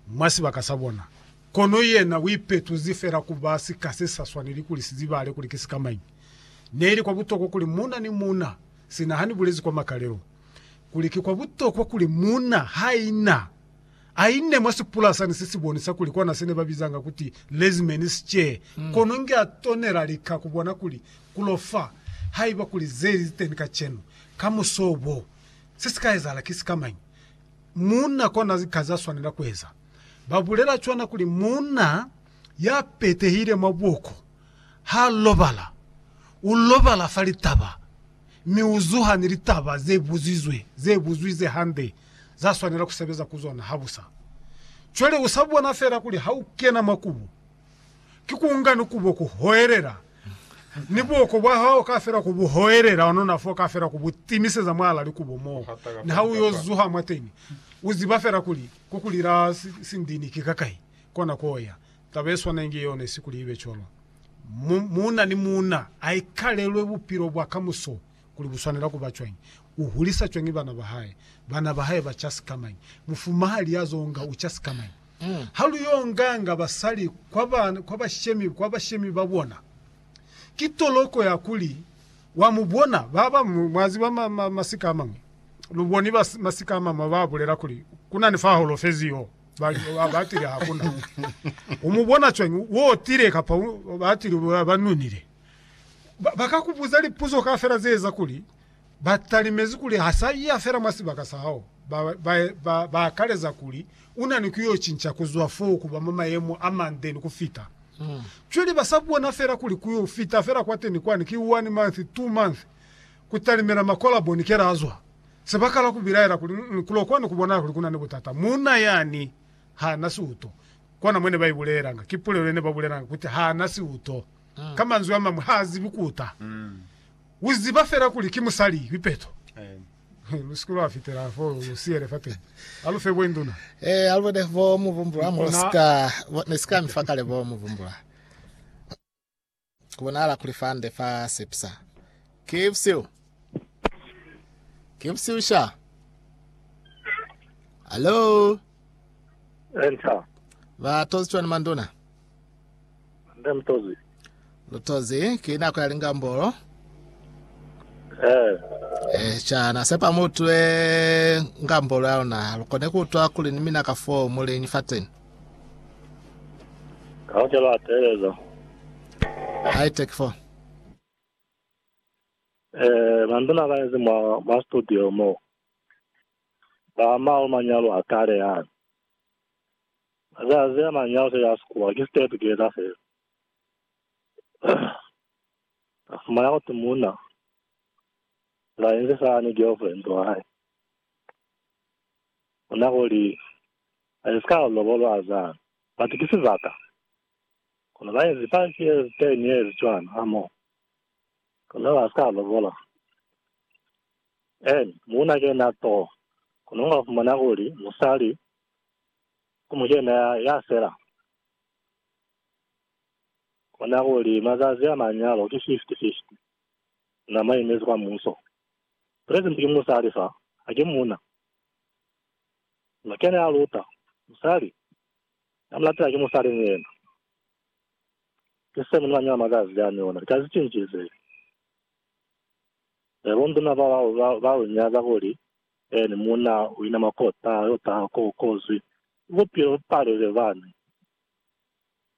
mwa sibaka sa bona, kono yena uipetuzi fela kuba sika se sa swaneli kuli sizibahale kuli ki sikamañi. Neili kwa butokwa kuli muuna ni muuna, sina hani bulezi kwa makalelo, kuli ki kwa butokwa kuli muuna haina aine mwa sipulasani se si bonisa kuli kona sene ba bizanga kuti Lezmen's Chair, kono nge a tonela lika kubona kuli kulo fa, haiba kuli zeli ziteni kacenu, kamuso bo, se sika ezahala ki sikamañi. Muuna kona ka za swanela kueza. Ba bulela cwana kuli muuna ya petehile mwa buko ha lobala, u lobala fa litaba mi u zuha ni litaba ze buzizwe, ze buzwi ze hande za swanela ku sebeza ku zona habusa. Cwale u sa bona fela kuli ha u kena mwa kubo ki ku nga ni kubo ku hoelela, ni buoko bwa hao ka fela ku bu hoelela, onona fo ka fela ku bu timiseza mwala likubo mo, ni ha u yo zuha mwateni, u ziba fela kuli ku kuli la sindini ki kakai kona ko ya. Taba ye swana inge yeo ne si kuli ibe cwalo. Mu, muuna ni muuna a ikalelwe bupilo bwa kamuso kuli bu swanela kuba cwañi, u hulisa cwañi bana ba hae, bana ba hae ba ca sikamañi, mufumahali ya zo nga u ca sikamañi. Ha lu yo nganga basali kwa bashemi ba bona, ki toloko ya kuli wa mu bona. Ba bañwi, mwa ziba, masika a mañwi, lu boni masika a mañwi ba bulela kuli, Ku na ni fa holofezi yo. Ba li, A ba tile? Ha ku na. U mu bona cwañi? Wo tile, kapa ba tile, ba nunile. Ba ka ku buza lipuzo kaufela ze eza kuli Ba talimezi kuli ha sa iya fela mwa sibaka sa hao, ba, ba, ba, ba akaleza kuli u na ni ku yo cinca ku zwa fo ku ba mwa mayemo a mande ni ku fita. Cwale ba sa bona fela kuli ku yo fita fela kwateni kwani ki one month, two month, ku talimela makolabo ni kela a zwa. Se ba kala ku bilaela kuli, Mm-mm, ku lo kwani ku bonahala kuli ku na ni butata. Muuna yani ha na siuto. Kona mwe ne ba ibulelanga. Ki pulelo ye ne ba bulelanga, kuti ha na siuto. Ka manzwi a mañwi, ha zibi ku ta. U ziba fela kuli ki musali lipeto. Lu si ke lwa fitela fo lu siyele fateni. A lu fe bo induna. Ee, a lu bone bo mubumbula mo lu si ka. Ne si ka mi fa kale bo mubumbula. Ku bonahala kuli fa nde fa sepisa. Ki busihu. Ki busihu sha. Hallo? Enter. Ba tozi cwani manduna? Nde mutozi. Mutozi ki nako ya lingambolo. Eh. Eh, chana sepa mutwe ngambolo ya luna lukone kutwa kuli ni mina ka fo muleñi fateni. Kaoke lwa teleza. High tech fo. Eh, manduna ka ezi mwa mwa studio mo. Ba ma manyalo a kale ya. Mazazi a mañi ao seya sikuwa ki stay together fela. A fumana kuti muuna la inzi fana ni girlfriend wa hae. Ona kuli a iska a lobolwa azana. But ki sibaka. Kono ba inzi five years, ten years cwana ha more. Kono ha ska lobola. And muuna ke yena too. Kono unga fumana kuli musali Ku muca yena ya sela. Kona kuli mazazi a manyalo ki 50, 50. Na maimezi kwa muso. Present ki musali fa, haki muna. Na kene a luta. Musali. Na mu latela ki musali ni yena. Ki se muna manyalo mazazi a ni ona. Likazi cinci ze. Nabo nduna bao ba lu nyaza kuli Then muuna u inama k'o taha, yo taha k'o kozwi. Bupilo bu palile, bani.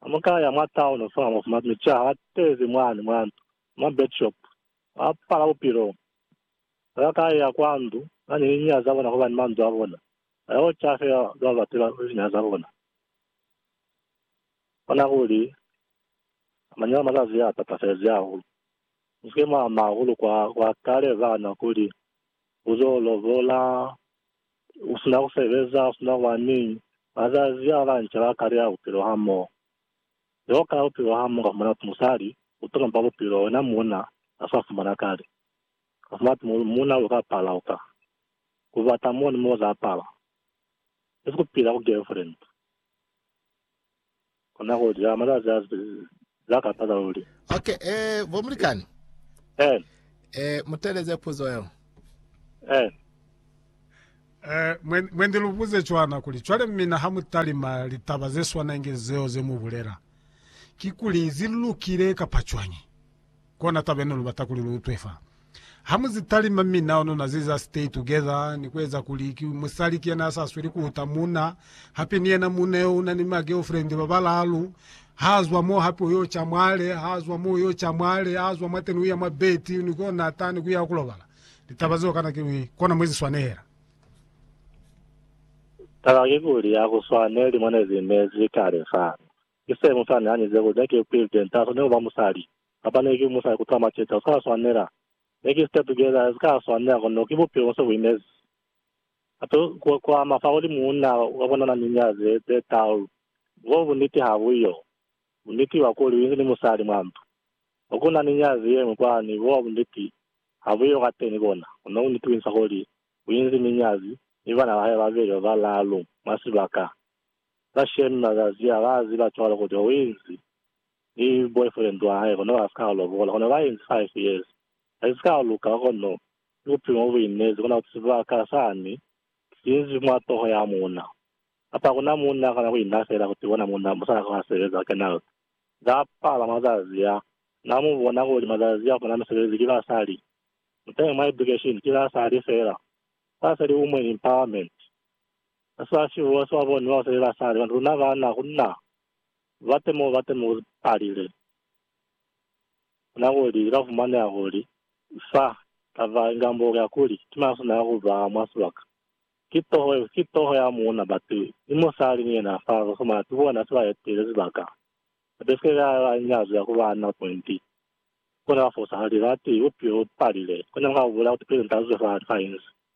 Ha mu ka ya mwa town fa, mwa fumana mi ca ha tezi mwani mwa ndu, mwa bed shop, ba pala bupilo. Ha ba ka ya kwa ndu, ba ni linya za bona hobani manzwi a bona a yo ca fela za ba batela linya za bona. Kona kuli, manya a mazazi a tatafezi hahulu. Mu si ke mwa ama hahulu kwa, kwa kale, bana, kuli U zo lobola, u sina ku sebeza, u sina kuba ni bazazi a banca ba kale a bupilo hamoho. Ze u kala bupilo hamoho ka fumana musali, u to lompa bupilo wena muuna a sa fumana kale. Ka fumana tumo kuli muuna lu ka pala ku ka ku bata mo ni mo za pala. Isi ku pila ku girlfriend. Kona ku ja malazi a za ka pata luli. Ok, eh, bo mulikani. Eh. Eh, muteleze puzo yeo. Eh. Eh, mwe, mwe ndi lubuze cwana kuli, cwale mina ha mu talima litaba ze swana inge zeo ze mu bulela, kikuli zi lukile kapa cwañi? Kona taba yene lubata kuli lu utwe fa. Ha mu zi talima mi nao nuna zi za stay together ni ku eza kuli ki musali ki yena ya sa sweli ku uta muna. Hape ni yena muna yo una ni ma girlfriend ba balalu. Ha zwa mo hape uyo ca mwale, ha zwa mo uyo ca mwale, ha zwa mwateni uya mwa bed ni ko nata ni kuya kulobala. Litaba zeo kana ki kona mwe zi swanela. Taba ki kuli ha ku swaneli mone zi nezi kale fa. Mr. Musa ne a nyize kuli, Ne ki Phil Dent, ha swaneli kuba musali. Kapa ne ki musali kutwala maceta, sika swanela. Ne ki Step Together, sika swanela, kono ki bupilo nse buinezi. Hape ku, ku ama fa kuli muuna wa bona na ni nyazi ze, ze talu. Bo buniti ha bu yo. Buniti ba kuli, u inzi ni musali mwa ndu. Mo ku na ni nyazi yeñwi kwani, bo buniti ha bu yo kateni kona. Kono buniti buinisa kuli, u inzi ni nyazi, ni bana ba hae babeli ba balalu, mwa sibaka. Ba shame makazi ya ka azi ba cwalo kute o inzi ni boyfriend wa hae kono ba sika lobola kono ba inzi five years asi sika luka kono ki bupilo bo bu inezi kona kuti sibaka sani sinzi mwa toho ya muuna kapa kuna muuna akona ku ina fela kuti bona muuna musala ka wa sebeza kenal za pala mazazi a na mu bona kuli mazazi a funa misebezi ki basali mutenge mwa education ki basali fela basali women empowerment Ba sa si huwa swa boni bao seli ba sa li, Luna ba na ku na, ba temo ba batemo ku palile, na kuli li ka fumaneha kuli sa taba inga mbo ya kuli ki masu na ku ba mwa sibaka. Ki toho, ki toho ya muuna batu ni musali ni yena fa ba fumana ti bona si ba etile sibaka, ba besikile ka ba nyazwi ya ku ba na pointi. Ku na ba fosa kuli, Batu, bupilo bu palile, kono mu ka bu bula kuti pili nta zwe fa, fa inzi.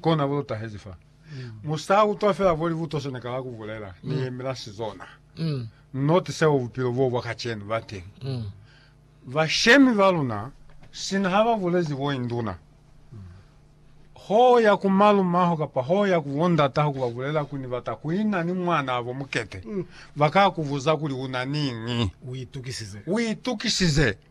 kona bo lu tahezi fa. Mu sa utwa fela bo libuto se ne kala ku bulela, ni yemela sizona. Noti seo bupilo bo bwa kacenu ba teng. Bashemi ba luna sina ha ba bulezi bo induna, ho ya ku malumaho kapa ho ya ku bondata ha ku ba bulela kuli ni bata ku ina ni mwanabo mukete, ba ka ku buza kuli u na niñi. U itukisize. U itukisize.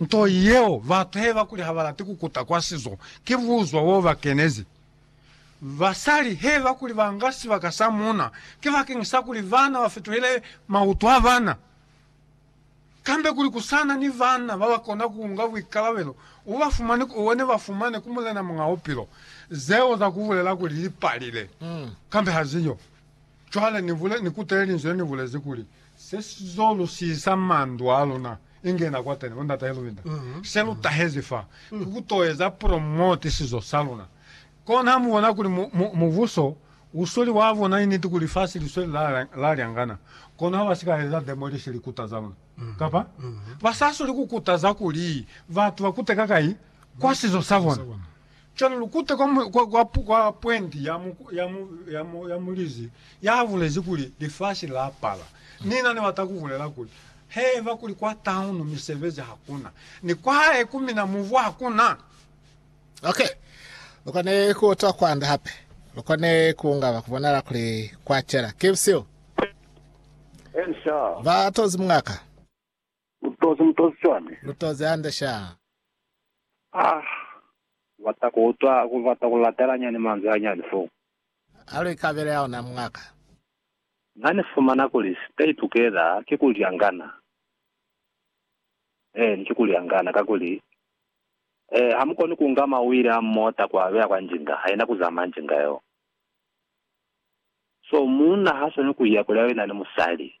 Nto yeo batu heba kuli habalati kukuta kwa sizo ki buzwa bo ba kenezi. Basali heba kuli banga sibaka sa muuna ki bakeng sa kuli baana ba fituhele mautu a baana, kambe kuli kusana ni baana baba kona kuunga buikalabelo bo ba fumani ku one ba fumane ku Mulena Muñ'a Bupilo. Zeo za kubulela kuli li palile, kambe haziyo. Cwale nivule, nikutele linzwi le nivulezi kuli, Se sizo lusisa mandu aluna, inge na kwateni, bo Ndata Hilwinder, se lu tahezi fa, ki ku to eza promote sizo saluna. Kono ha mubona kuli mu, mu, mubuso usweli wa bona initi ku lifasi lisweli la, la lyangana, kono ha ba si ka eza demolish likuta zaluna. Kapa, ba sa soli ku kutaza kuli batu ba kute kakai kwa sizo sabona. Cwale lukuta kwa, kwa, kwa, kwa pwenti ya, mu, ya, mu, ya, mu, ya mulizi yabulezi kuli lifasi lapala. Nina nibata kubulela kuli, Haiba kuli kwa taunu misebezi hakuna, ni kwahae ku mina mubu hakuna. Okay. Lukone kuutwa kwanda hape. Lukone kuungaba kubonala kuli kwacela. Kibsio. Ensa. Ba tozi mungaka. Mutozi, mutozi cwani? Mutozi hande sha. Ah! Kubata kuutwa, kubata kulatela nyani manzwi hanyani foo. Aluikabele aona mungaka. Nani fumana kuli stay together ki kulyangana. Eeni, ki kulyangana, kakuli, eh, hamukoni kunga mawili a mota kuabeya kwa njinga, haina kuzama njinga yeo. So, munna haswani kuya kuli abe nani musali.